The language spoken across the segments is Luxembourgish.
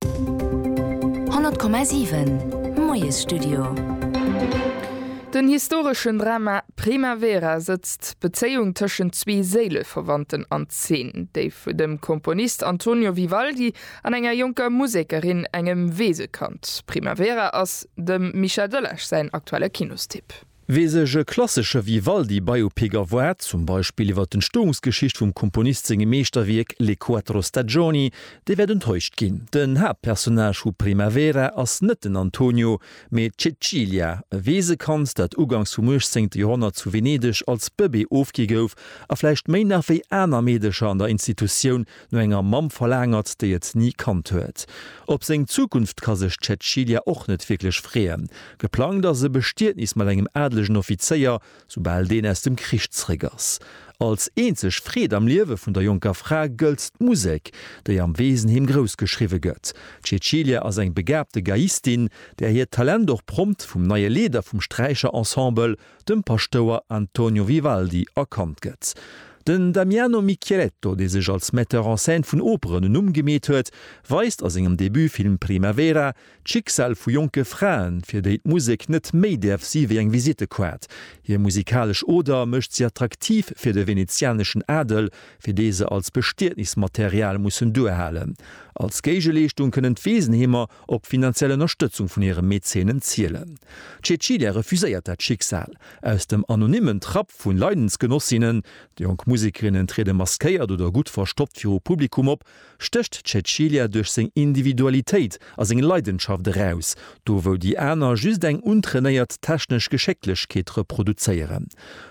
100,7 Moiesstudio. Den historeschen Drama Primavera sëtzt d'Bezéiung tëschent zwee Séileverwandten an Zeen, déi vun dem Komponist Antonio Vivaldi an enger jonker Musekerin, engem Weesekand. Primavera ass dem Mischa Döllesch säin aktuelle Kinostipp. Wee sech e klassesche Vivaldi-Biopic erwaart, zum Beispill iwwer d'Entstoungsgeschicht vum Komponist sengem Meeschterwierk Le quattro stagioni, dee wäert enttäuscht ginn. Den Haaptpersonnage vu Primavera ass net den Antonio, mee d'Cecilia, e Weesekand, dat ugangs vum uechtzéngte Joerhonnert zu Venedeg als Bëbee ofgi gouf a vläicht méi nach wéi aner Meedecher an der Institutioun No enger Mamm verlaangert, déi et ni kannt huet. Op seng Zukunft ka sech d'Cäcilia och net wierklech freeën. Geplangt ass e Bestietnis mat engem adelegen Offizéier, soubal deen aus dem Krich zeréck ass. Als eenzeg Freed am Liewe vun der jonker Fra gëllt d'Musek, déi am Weesenheem grouss geschriwwe gëtt. D'Cäcilia ass eng begaabte Geiistin, där hiert Talent och prompt vum neie Leeder vum Sträicherensemble, dem Paschtouer Antonio Vivaldi erkannt gëtt. Den Damiano Micheletto, dee sech als Metteur en scène vun Operen en Numm gemeet huet, weist a sengem Debutfilm Primavera d'Schicksal vu jonke Fraen, fir déi d'Musek net méi däerf si wéi eng Visittekaart. Hir musikalesch Oder mécht si attraktiv fir de venezianeschen Adel, fir dee se als Bestietnismaterial mussen duerhalen. Als Géigeleeschtung kënnen d'Weesenheemer op finanziell Ënnerstëtzung vun hire Mäzenen zielen. D'Cecilia refuséiert dat Schicksal. Aus dem anonymmen Trapp vu Leidensgenossinnen, déi jonk Musekerinnen triede maskéiert oder gutt verstoppt viru Publikum op, stécht d'Cecilia duerch seng Individualitéit a seng Leidenschaft eraus, do wou déi aner just eng untrainéiert technesch Geschécklechkeet reproduzéieren.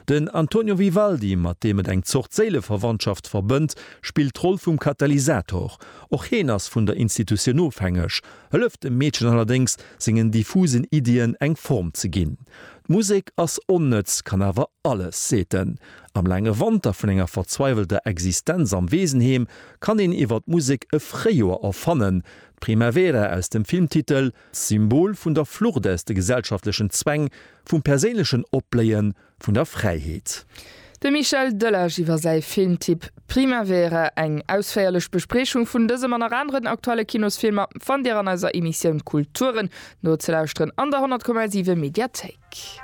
Den Antonio Vivaldi, mat deem et eng Zort Séileverwandschaft verbënnt, spillt d'Roll vum Katalysator. Och heen ass vun der Institutioun ofhängeg, hëlleft dem Meedchen allerdéngs, sengen diffusen Iddien eng Form ze ginn. D'Musek ass onnëtz, kann awer alles, seet en. Am laange Wanter vun enger verzweiwelter Existenz am Weesenheem kann een iwwer d'Musek e Fréijoer erfannen. D'Primavera aus dem Filmtitel, Symbol vun der Flucht aus de gesellschaftlechen Zwäng, vum perséinlechen Opbléien vun der Fräiheet. De Michel Delage iwwer säi Filmtipp Primavera. Eng ausféierlech Bespriechung vun dësem an nach aneren aktuelle Kinosfilmer fannt Dir an eiser Emissioun Kulturen nozelauschteren an der 100,7 Mediathéik.